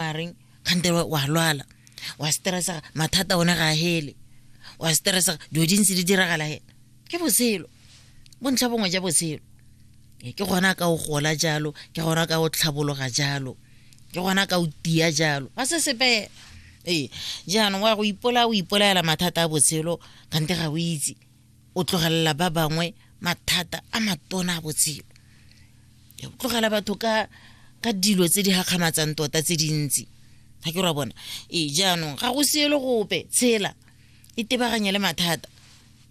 mareng kgante wa lwala wa stressa mathata one ga hele wa stressa dilo di ntse di diragala he ke botshelo bontlha bongwe ja botshelo ke gona ka o gola jalo ke gona ka o tlhabologa jalo ke gona ka o tia jalo ga se sepe ee jaanong wa go ipola o ipolaela mathata a botshelo kgante ga o itse o tlogelela ba bangwe mathata a matona a botshelo o tlogela batho ka ka dilo tse di gakgamatsang tota tse dintsi ga ke ra bona ee jaanong ga go siele gope tshela e tebaganye le mathata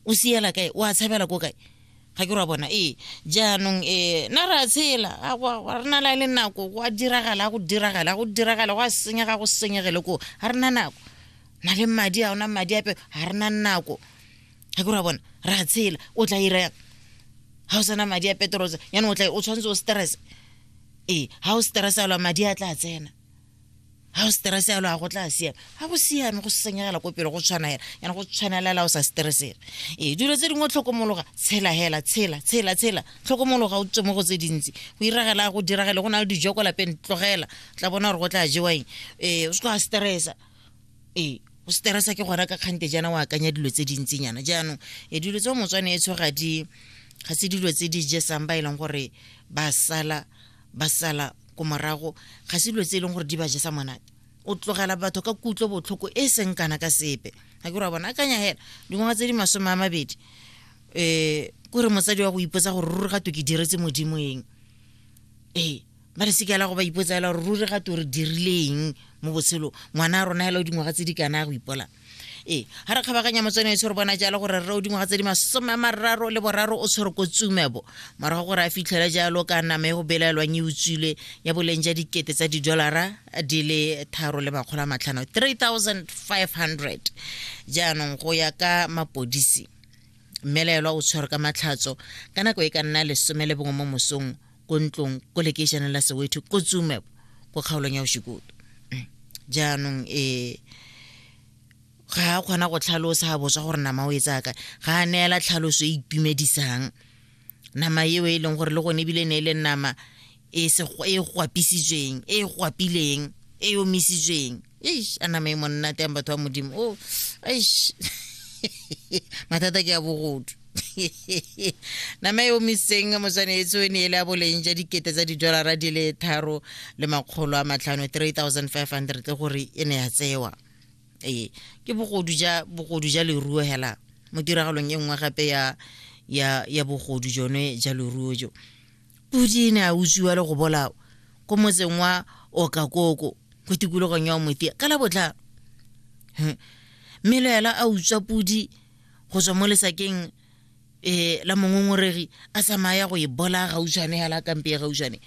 o siela kae o a tshabela ko kae ga ke ra bona ee jaanong um na re a tshela re na la le nako go a diragala go diragala go diragala go a senyega go senyegele ko ga re na nako na le madi a ona madi ape ga re na nako ga kore wa bona re a tshela o tla ira yang ga o sana madi a petrose yana o tla o tshwanetse o stress ee ga o stress alo madi a tla tsena ga o stress alo a go tla siame ga go siame go senyegela ko pele go tshwana hela yana go tshwanelela o sa stressela ee dilo tse dingwe tlhokomologa tshela hela tshela tshela tshela tlhokomologa o tswe mo go tse dintsi go iragela go diragele go na le dijo ko lapeng tlogela tla bona gore go tla jewa eng ee o se tlo a stressa ee o seterasa ke gora ka kgante jaana o akanya dilo tse dintsinyana jaanong e dilo tse motswane e tshoga di ga se dilo tse di jesang ba e leng gore ba sala ba sala ko morago ga se dilo tse e leng gore di ba jesa monate o tlogela batho ka kutlo botlhoko e seng kana ka sepe ga ke ra bona akanya hela dingwaga tse di masome a mabedi um kore motsadi wa go ipotsa gore ruri ga to ke diretse modimo eng ee ba re se ke la go ba ipotsa fela gore ruri ga to re dirileng mo botshelo ngwana a rona fela o dingwaga tse di kana go ipola ee ga re kgabaganya motswane e tshwere bona jalo gore rre o dingwaga tse di masome a mararo le boraro o tshwere ko tsumebo morago gore a fitlhela jalo ka nama e go belaelwang e utswile ya boleng ja dikete tsa didolara di le tharo le makgolo a matlhano 3500 jaanong go ya ka mapodisi mmelaelwa o tshwere ka matlhatso ka nako e ka nna lesome le bongwe mo mosong ko ntlong ko lekeišeneng la sewetho ko tsumebo ko kgaolong ya oshikoto mm. jaanong um ga a kgona go tlhalosa ga botswa gore nama o e tsaka ga a neela tlhaloso e itumedisang nama eo e leng gore le gone ebile ne e le nama e, e gwapisitsweng e gwapileng e omisitsweng eish a nama e monnate yang batho ba modimo o oh, eish mathata ke ya bogodu nama e omisitseng motshwanetsi o ne e le a boleng ja dikete tsa didolara di le tharo le makgolo a matlhano 3500 gore e ne ya tsewa ee ke bogodu ja bogodu ja leruo hela mo tiragalong e nngwe gape ya ya ya bogodu jone ja leruo jo pudi ne a utswiwa le go bolawa ko motseng wa okakoko ko tikologong ya omotia ka la botlhano mme le ela a utswa pudi go tswa mo lesakeng um la mongongoregi a tsamaya go e bola gautshwane ya la kampe ya gautshwane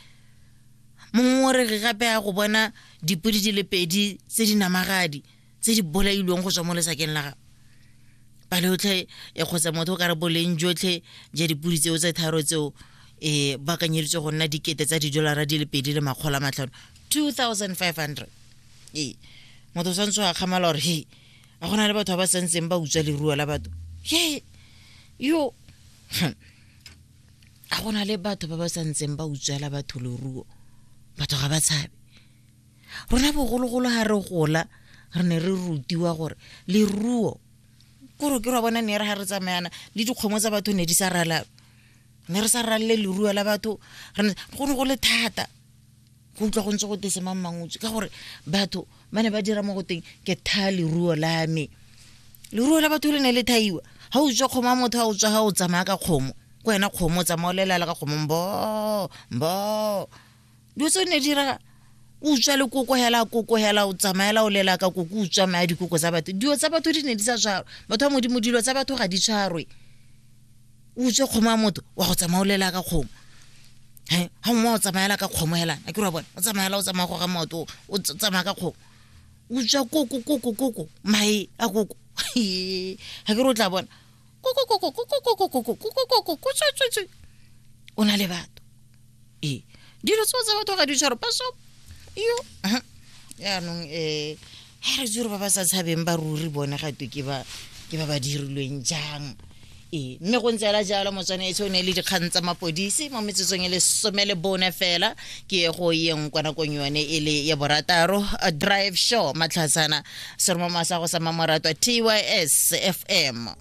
mongongoregi gape ya go bona dipodi di le pedi tse di namagadi tse di bolailweng go tswa mo lesakeng la gago pale otlhe e kgotsa motho o ka re boleng jotlhe ja dipodi tseo tse tharo tseo um ba kanyeditswe go nna dikete tsa didolara di le pedi le makgolo a matlhano 2500 ee motho o tshwanetse wa kgamala gore he a go na le batho ba ba santseng ba utswa leruo la batho ye yo a go na le batho ba ba santseng ba utswela batho leruo batho ga ba tshabe rona bogologolo ga re gola re ne re rutiwa gore leruo kore ke ra bona ne re ga re tsamayana le dikgomo tsa batho ne di sa ralaba ne re sa ralele leruo la batho go ne go le thata go utlwa go ntse go tese mang mangutswe ka gore batho ba ne ba dira mo go teng ke tha leruo la me leruo la batho le ne le thaiwa ga o tswa kgomo a motho a o tswa ga o tsamaya ka kgomo ko wena kgomo o tsamaya o lelala ka kgomo mbo mbo dilo tse o ne dira o utswa le koko hela koko hela o tsamaela o lela ka koko o tswa maya dikoko tsa batho dilo tsa batho di ne di sa tshwarwe batho ba modimo dilo tsa batho ga di tshwarwe o utswe kgomo ya motho wa go tsamaolela ka kgomo he ga mongwe o tsamaela ka kgomo helang a ke ra bone o tsamaela o tsamaya go ga maoto o tsamaya ka kgomo o tswa koko koko koko mae a koko ga ke re o tla bona o na le batho e dilo tseo tsa batho ga di tshwaro ba so yo yaanong um eh, ga re tsore ba ba sa tshabeng ba ruri bone ga twe ke ba ke ba ba dirilweng jang ee mme go ntse ela jalo motswanetse o ne le dikgang tsa mapodisi mo metsotsong e le some le bone fela ke ye go yeng kwa nakong yone e le ya borataro drive show matlhatsana seromoma sa go sa mamoratwa tys fm